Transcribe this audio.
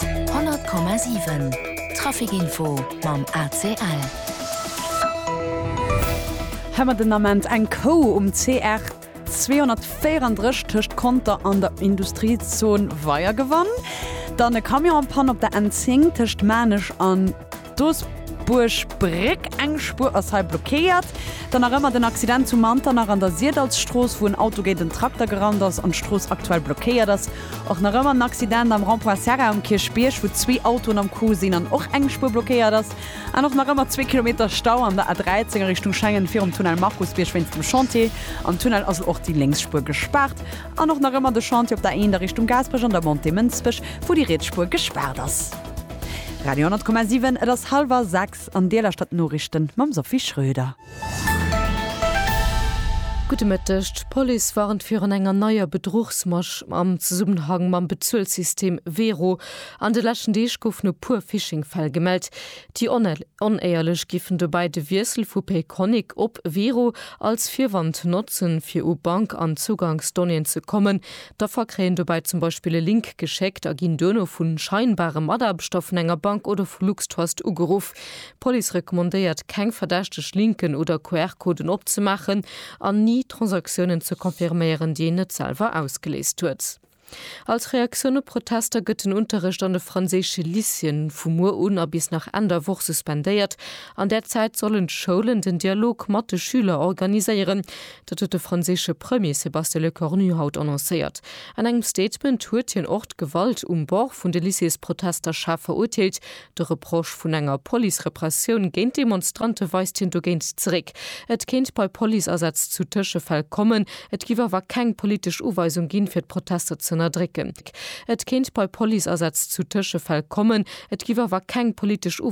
100,7 Trafic Info mam ACL. Hei mer den Ament eng Kou um CR 234 tëscht Conter an der Industriezon Weiergewann. Dann e Camion an Panne op der N10 tëscht Maarnech an. D'Doesbuerg Bréck, eng Spuer ass hei blockéiert. Dann nach ëmmer den Accident zu Manternach an der Siedalsstrooss, wou en Auto géint en Trakter gerannt ass an d'Strooss aktuell blockéiert ass. Och nach ëmmer en Accident am Rond-point Serra um Kierchbierg, wou zwee Autoen am Coup sinn an och eng Spuer blockéiert ass. An och nach ëmmer zwee Kilometer Stau an der A13 a Richtung Schengen virum Tunnel Markusbierg wéinst dem Chantier. Am Tunnel ass elo och déi lénks Spuer gespaart. An och nach ëmmer de Chantier op der A1 a Richtung Gaasperech an der Montée Mënsbech, wou déi riets Spuer gespaart ass. Radio 10,7 Et ass hallwer 6 an Dir lauschtert d'Noriichten mam Sophie Schröder. Gudde Mëtteg, D'Police warnt virun enger neier Bedruchsmasch am Zesummenhang mam Bezuelsystem Wero. An de leschten Deeg goufen e puer Phishing-Fäll gemellt. Déi Onéierlech géifen dobäi de Wiessel vu Payconiq op Wero als Virwand notzen, fir u Bank an Zugangsdonnéeën ze kommen, D'Affer kréien dobäi zum Beispill e Link geschéckt a ginn duerno vu scheinbare Mataarbechter vun enger Bank oder vu LuxTrust ugeruff. D'Police recommandéiert, keng verdächteg Linken oder QR-Coden opzemaachen an ni Transaktiounen ze confirméieren, déi een net selwer ausgeléist huet. Als Reaktioun op Protester gëtt den Unterrecht an de franséische Lycéeën vu muer un a bis nach Enn der Woch suspendéiert. An där Zäit sollen d'Schoulen den Dialog mat de Schüler organiséieren. Dat huet de franséische Premier Sébastien Lecornu haut annoncéiert. An engem Statement huet hien och d'Gewalt um Bord vun de Lycées-Protester schaarf verurteelt. De Reproche vun enger Police-Repressioun géint d'Demonstrante weist hien dogéint zeréck. Et kéint bei Police-Asätz zu Tëschefäll kommen, et giff awer keng politesch Uweisung ginn, fir d'Protester z'ënnerdrécken. Et kéint bei Police-Asätz zu Tëschefäll kommen, et giff awer keng politesch Uweisung.